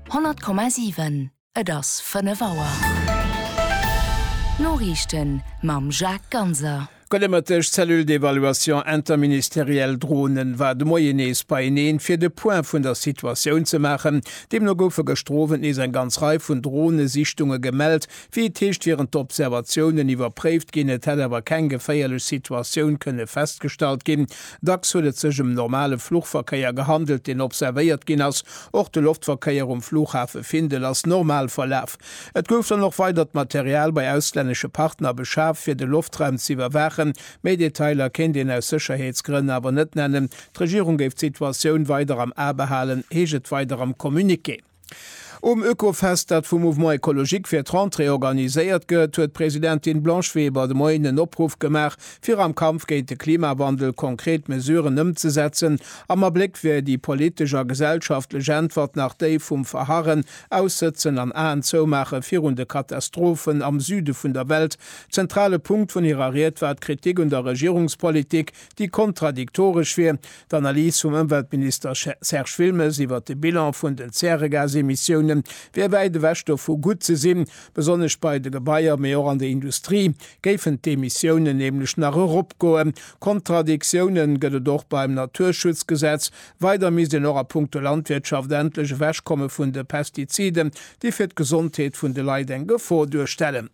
100,7 Et ass 5 Auer. D'Noriichten mam Jacques Ganser. D'goldemëtteg Cellule d'évaluation interministérielle Dronen war de Moien nees beieneen, fir de Point vun der Situatioun ze maachen. Deemno goufe gëschter Owend nees eng ganz Rei vun Dronesichtunge gemellt, Wéi et heescht, wieren d'Observatiounen iwwerpréift ginn, et hätt awer keng geféierlech Situatioun kënne festgestallt ginn. Dacks huet et sech ëm normale Fluchverkéier gehandelt, deen observéiert ginn ass. Och de Loftverkéier um Flughafe Findel ass normal verlaf. Et gouf dann och weidert Material bei auslännesche Partner beschaf, fir de Loftraum ze iwwerwaachen. Méi Detailer kéint een aus Sécherheetsgrënn awer net nennen. D'Regierung géif d'Situatioun weider am A behalen, heescht et weider am Communiqué. Um Oekofest, dat vum Mouvement Ecologique fir d'Rentrée organiséiert gëtt, huet d'Presidentin Blanche Weber de Moien en Opruff gemaach, fir am Kampf géint de Klimawandel konkret Mesuren ëmzesetzen. Am Abléck wier déi politesch a gesellschaftlech Äntwert nach déi vum Verharren, Aussëtzen an Aen zoumaache virun de Katastrophen am Süde vun der Welt. Zentrale Punkt vun hirer Ried war d'Kritik un der Regierungspolitik, déi kontradiktoresch wier, d'Analys vum Ëmweltminister Serge Wilmes iwwert de Bilan vun den Zäregasemissiounen wier wäit ewech dovu gutt ze sinn, besonnesch bei de Gebaier, mee och an der Industrie géifen d'Emissiounen nämlech nach eropgoen. Kontradiktiounen gëtt et och beim Naturschutzgesetz, weider misst een och a punkto Landwirtschaft endlech ewechkomme vun de Pestiziden, déi fir d'Gesondheet vun de Leit eng Gefor duerstellen.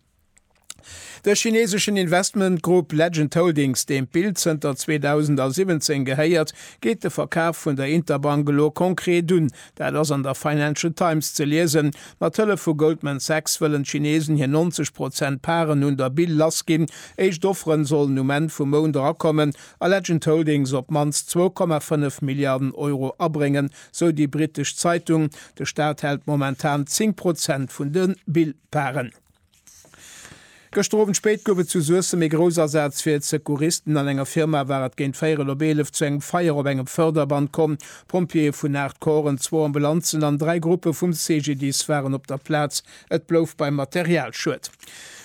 De chineseschen Investmentgrupp Legend Holdings, deem d'Bild zënter 2017 gehéiert, geet de Verkaf vun der Interbank elo konkret un. Dat ass an der Financial Times ze liesen. Mat Hëllef vu Goldman Sachs wëllen d'Chinesen hir 90 Prozent Paren un der Bil lassginn. Éischt Offere sollen um Enn vum Mount erakommen a Legend Holdings op d'mannst 2,5 Milliarden Euro abréngen, sou déi britesch Zeitung. De Staat hält momentan 10 Prozent vun de Bil-Paren. Gëschter Owend spéit gouf et zu Suessem ee Groussasaz fir d'Secouristen. An enger Firma war et géint véierel op eelef zu engem Feier op engem Förderband komm. Pompjeeë vun 8 Corpsen, zwou Ambulanzen an dräi Gruppe vum CGDIS waren op der Plaz. Et blouf beim Materialschued.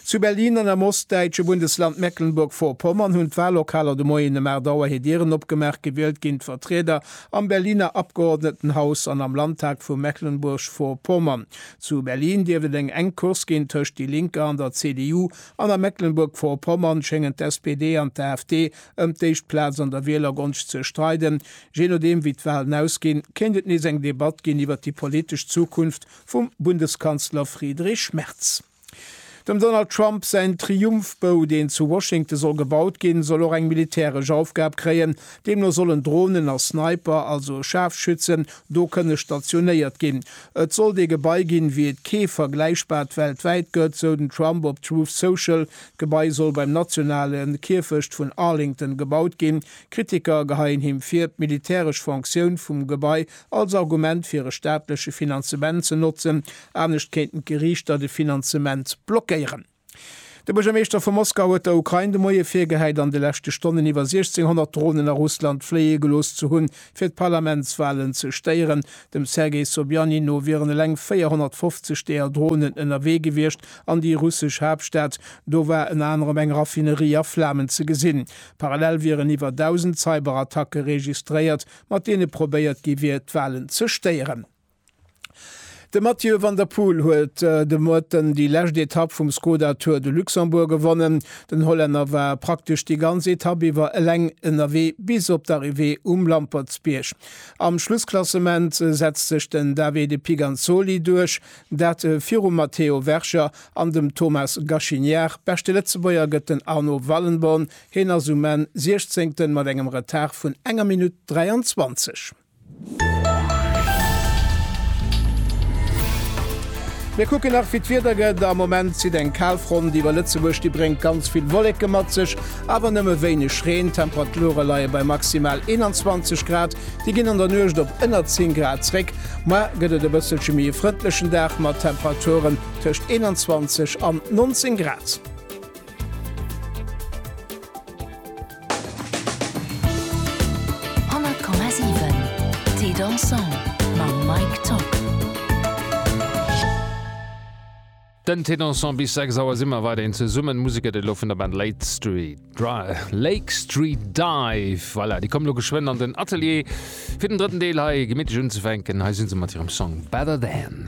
Zu Berlin an am ostdäitsche Bundesland Mecklenburg-Vorpommern hunn d'Wallokaler de Moien ëm 8 Auer hir Dieren opgemaach. Gewielt ginn d'Vertrieder am Berliner Abgeordnetenhaus an am Landtag vu Mecklenburg-Vorpommern. Zu Berlin dierft et eng enk Course ginn tëscht déi Linker an der CDU, an a Mecklenburg-Vorpommern schéngen d'SPD an d'AfD ëm d'éischt Plaz an der Wielergonscht ze streiden. Jee nodeem wéi d'Walen ausginn, kéint et nees eng Debatt ginn iwwer déi politesch Zukunft vum Bundeskanzler Friedrich Merz. Dem Donald Trump säin Triumphbou, deen zu Washington soll gebaut ginn, soll och eng militäresch Aufgab kréien. Deemno sollen Dronen a Sniper, also Schaarfschützen, do kënne stationéiert ginn. Et sollt ee Gebai ginn, wéi et kee vergläichbart weltwäit gëtt, sou den Trump op Truth Social. D'Gebai soll beim nationale Kierfecht vun Arlington gebaut ginn. Kritiker geheien him vir, d'militäresch Fonctioun vum Gebai als Argument fir e staatleche Finanzement ze notzen, anescht kéinten d'Geriichter de Finanzement blockéieren. De Buergermeeschter vu Moskau huet der Ukrain de Moie virgehäit, an de leschte Stonnen iwwer 1,600 Dronen a Russland fléie gelooss ze hunn, fir d'Parlamentswalen ze stéieren. Dem Sergei Sobjanin no wieren eleng 450 deeër Dronen ënnerwee gewiescht an déi russesch Haaptstad. Do war ënner anerem eng Raffinerie a Flamen ze gesinn. Parallel wieren iwwer 1.000 Cyberattacke registréiert. mat deene probéiert gi wier, d'Walen ze stéieren. De Mathieu van der Poel huet de Moaten déi lescht Etapp vum Skoda Tour de Luxembourg gewonnen. Den Hollänner war praktesch déi ganz Etapp iwwer eleng ënnerwee bis op d'Arrivée um Lampertsbierg. Am Schlussklassement setzt sech den Davide Piganzoli duerch, dat virum Matteo Verger an dem Thomas Gachiniart. Beschte Lëtzebuerger gëtt den Arnaud Wallenborn, Heen ass um Enn Siechzéngten mat engem Retard vun enger Minutt 23. Mir kucken nach wéi d'Wieder gëtt. Am Moment zitt eng Kalfront iwwer Lëtzebuerg, déi bréngt ganz vill Wolleke mat sech, awer nëmme wéineg Reen. D'Temperature leie bei maximal 21 Grad, déi ginn an der Nuecht op ënner 10 Grad zréck. Moar gëtt et e bësselche méi e frëndlechen Dag mat Temperaturen tëscht 21 an 19 Grad. Den Té Dansant bis 6 Auer si mer weiderhin zesummen. D'Musek gëtt et elo vun der Band Late Street Dry, Lake Street Dive. Voilà, déi kommen elo geschwënn an den Atelier, fir den drëtten Deel hei gemittlech unzefänken. Hei si se mat hirem Song Better Than.